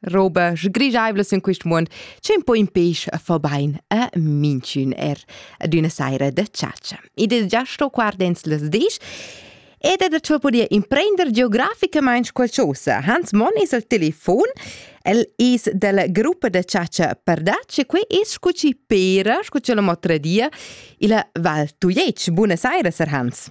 roba sgrigiaivla sin quist muond, c'è un po' in peisch a fa bain a minchün er ad üna saira da chatscha. Id es già sto guardens las disch ed è da ciò podia imprender geograficamaing qualchosa. Hans Monn es al telefon, el es della gruppa da chatscha Perdac e qui es scu chi pera, scu chi l'ho mot tradia, illa Val Tujetsch. Buona saira, Sir Hans.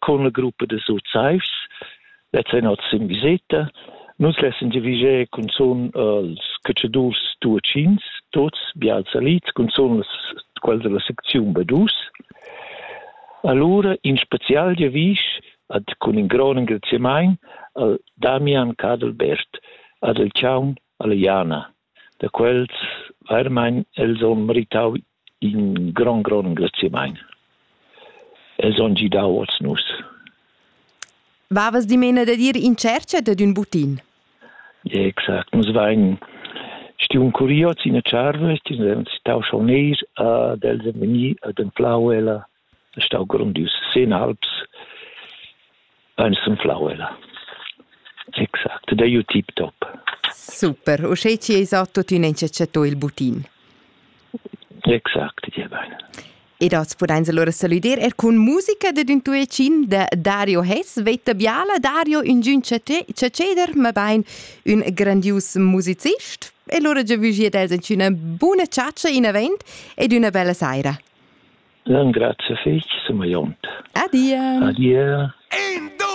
con la gruppa de Suzais, lets ein oz in viseta, nus lessen diviger cun zon els cacedurs tuacins, tots bials salits, cun zon les, quels della secziun Badus. Allora in special devisch ad cun in gran engraziamain al Damian Cadelbert ad el Chaun alla Jana. da quels vairamaing els ho meritau in grond grond engraziamaint. Els han gidau oz nus. Vavas dimena da dir in tschercha dad ün butin? Exact, nus vain stiun curios in a Tscharves, tau schau neir ad els è vegni ad anflau ella è stau grondius sin alps ein sunflau ella. Exact, det är ju tipptopp. Super, och tjej ci sa tuttina inte accettò il butin. Exakt, det är bein. Ed oz podeis allora saludar er cun musica ded un tuecin de Dario Hess, veta biala Dario, un giun ceceder, ma bein un grandius musicist. E allora già vugi ad els una buona ciaccia in avant ed una bella saira. Engrazia fetg, sumegliont. Adia. Adia.